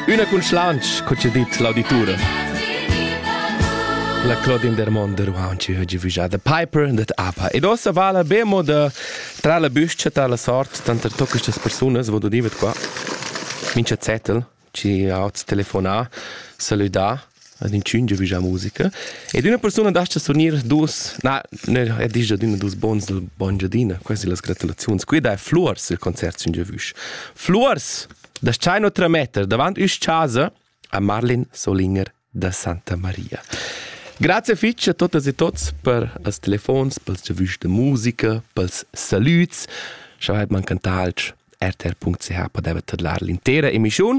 Üna cun schlanch, co ci dit l'auditura. La Claudine Dermond de Ruanci ha givugià The Piper and the Apa. Ed ossa vala bemo da tra la büscha ta la sort tanter tocca questas persunas, vodo divet qua, mincha zettel, ci ha hoz telefonà, salüdà, ad inchün giavüschà musica ed üna persuna das-cha s'unir duos na e disch adüna duos buns al buon Giadina quasi las gratulaziuns quida è Fluors il concert sün giavüsch Fluors das-chai no trametter davant üsch chasa a Marlin Solinger da Santa Maria Grazie fitch a totas e tots per els telefons, pels giavüschs de musica, pels salüds. Scha vaid man cantalch, rtr.ch podevet tadlar l'intera emischiun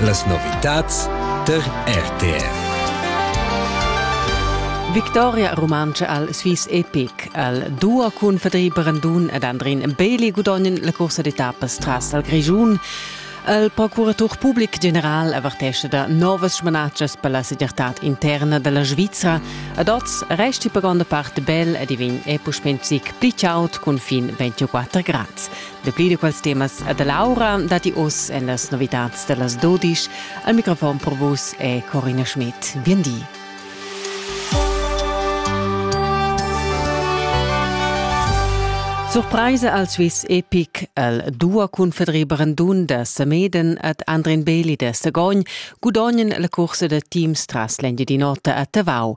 Las novitads tar RTR. Victoria Rumantscha al Swiss Epic al duo cun Fedri Brandun ed Andrin Bailey gudognan la cursa d'etappas tras al Grischun. Il procuratur public general avertesce da novas smanatschas per la segirtad interna dalla Svizra. Ad oz resti per gronda part bel ed i vegn è puspè zic pli chaud cun fin 24 grads. Dapli da quels temas e da l'aura datti oz en las novitads da las dodisch. Al microfon per vus è Corina Schmidt. Bien di. Surpraisa al Swiss Epic el dua cun Fedri Brandun da Sameden et Andrin Beli da Sagogn gudognen la cursa da teams tras l'Engiadin'Ota a Tavau.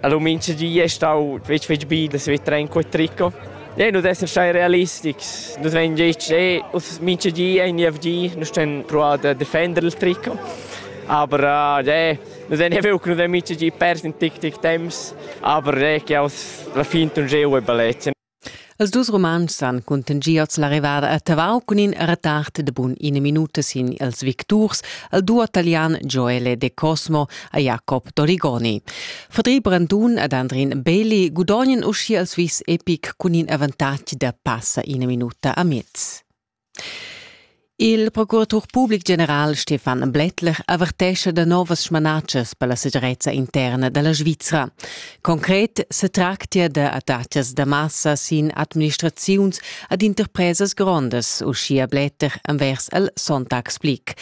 Allora minchadi è stau fetg fetg bi da saver trener quel tricot. E nu d'esser stai realistics. Nus vegn detg, eh, minchadi è in IFG, nus ten provar da defender il tricot. Aber äh, nus haben ja wirklich nicht mit die Pers in tic tic temps, aber äh, che aus la finta un geo e baletta. Els dus Rumantschs han cuntanschì oz la rivada a Tavau cun in retard da bun ina minuta sin ils victurs, il duo talian Joele De Cosmo e Jacob Torigoni. Fadri Brandun ed Andrin Beli gudognan uschia il Swiss Epic cun in avantatg da passa ina minuta a mez. Il procuratur public general Stefan Blättler avertescha da novas smanatschas per la segirezza interna da la Svizra. Concret setractia da attacas da massa sin administraziuns ad interpresas grondas, uschia Blättler envers el Sonntagsblick.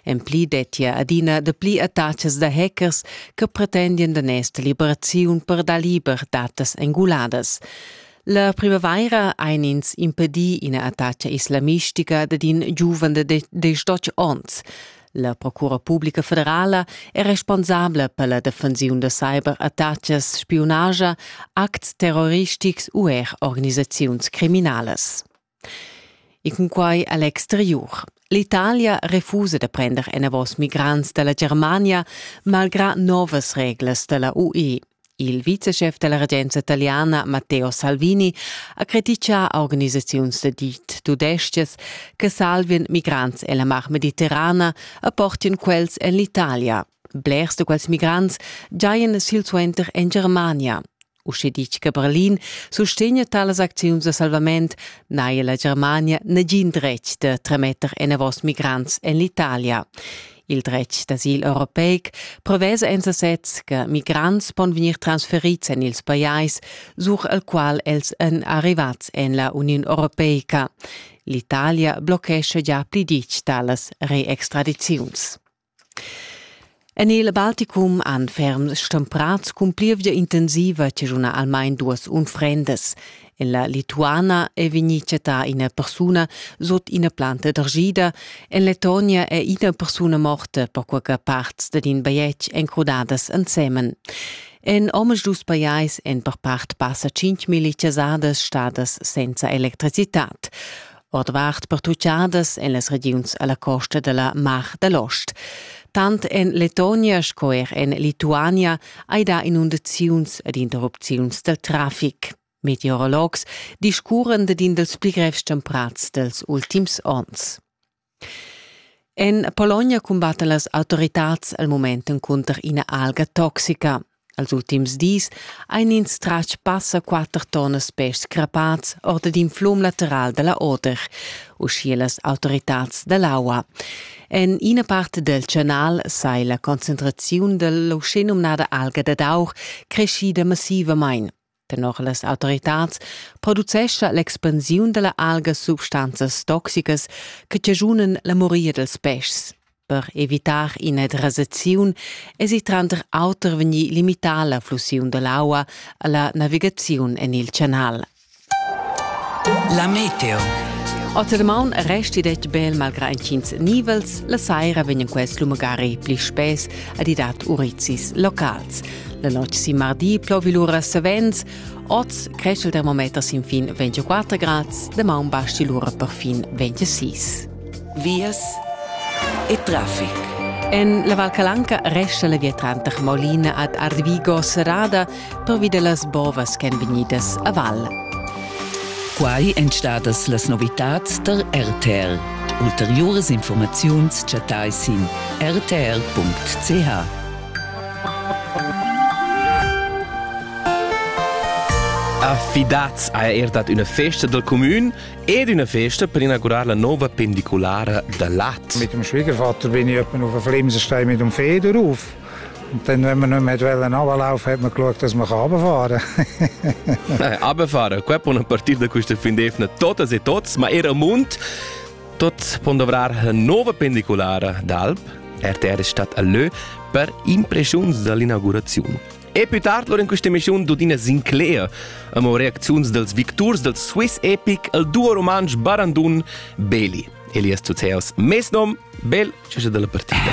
En pli dettia adina dapli attacas da hackers che pretendian daners da liberaziun per dar liber datas enguladas. La primavaira ein ins impedi ina attacca islamistica dad in giuven de destotg onns. La Procura Publica Federala è responsabla per la defensiun da cyberattacas, spionagia, acts terroristics u er organisaziuns criminalas. E cunquai a l'exteriur. L'Italia refusa da prender enavos migrants da la Germania malgrà novas reglas da la UE. Il viceschef da la regenza italiana Matteo Salvini ha crititgà a organisaziuns da dit tudestgas che salvien migrants en la Mar Mediterrana e portien quels en l'Italia, Blers da quels migrants giajan silsuenter en Germania. Usche ditg che Berlin sustegna talas acziuns da salvament, n'haja la Germania nagin dretg da tremetter enavos migrants en l'Italia. Il dretg d'asil europeic prevesa en sasez che migrants pon vegnir transferids en ils pajais, sur al qual els èn arrivats en la Uniun Europeica. L'Italia blochescha già pli ditg talas reextradiziuns. En il Balticum han ferms stemprads cun plievgia intensiva chaschunà almain duas unfrendas. En la Lituana è vegnì chattà ina persuna sut ina planta d'argida. En Letonia è ina persuna morta, perquai che parts dad in bajetg èn crudadas ensemen. En omaduus pajais èn per part passa 5.000 chasadas stadas senza electricitad. ordvart pertuchadas en las regiuns a la costa da la Mar da l'Ost. Tant en Letonia sco er en Lituania hai dà inundaziuns ed interrupziuns dal traffic. Meteorologs discurren dad in dals pli grevs temprats dals ultims onns. En Pologna cumbattan las autoritads al moment encunter ina alga toxica. Als ultims dis ein ins tratg passa quater tonnas pèschs crapats ord d'in flum lateral dalla Oder, uschia las autoritads dall'aua. En ina part del canal sai la concentraziun dell'uschenumnada alga dad aur creschida massivamain. Tenor las autoritads producescha l'expansiun dalla alga substanzas toxicas che chaschunan la moria dels peschs. Per evitar ina drasaziun esi tranter auter vegnì limità la flussiun dall'aua alla navigaziun en il canal. La meteo. Oz er maun resti detg bel malgra incins nivels, la saira vegnan quels lumagari pli spes ad idat urizis locals. La notg sin mardi plovi lura savens, oz cresch il termometer sin fin 24 grads, damaun basti lura per fin 26. Vias e traffic. En la Val Calanca resta la via tranter Molina ad Arvigo serrada pervi da las bovas ch'èn vegnidas a val. Quai èn stadas las novitads tar RTR. Ulteriuras informaziuns chattai sin rtr.ch. Affidats ha er dat üna festa dal cumün ed üna festa per inaugurar la nova pendiculara da Lat. Mit dem Schwiegervater bin ich etwa auf den Flimsenstein mit dem Feder auf. Und dann, wenn wir nicht mehr wollen runterlaufen, hat man geschaut, dass man runterfahren kann. Runterfahren, qua una partida da questa fin defna totas e tots, ma era mund. Tuts pon dovrar la nova pendiculara d'alp RTR Stadt Allö per impreschiuns dall'inauguraziun. E più tard lur in questa emissiun d'Udina Sinclair, amo reacziuns dels victurs del Swiss epic al duo romansch Barandun Beli. Elias Zuzeos, mes nom, bel, cescha dalla partida.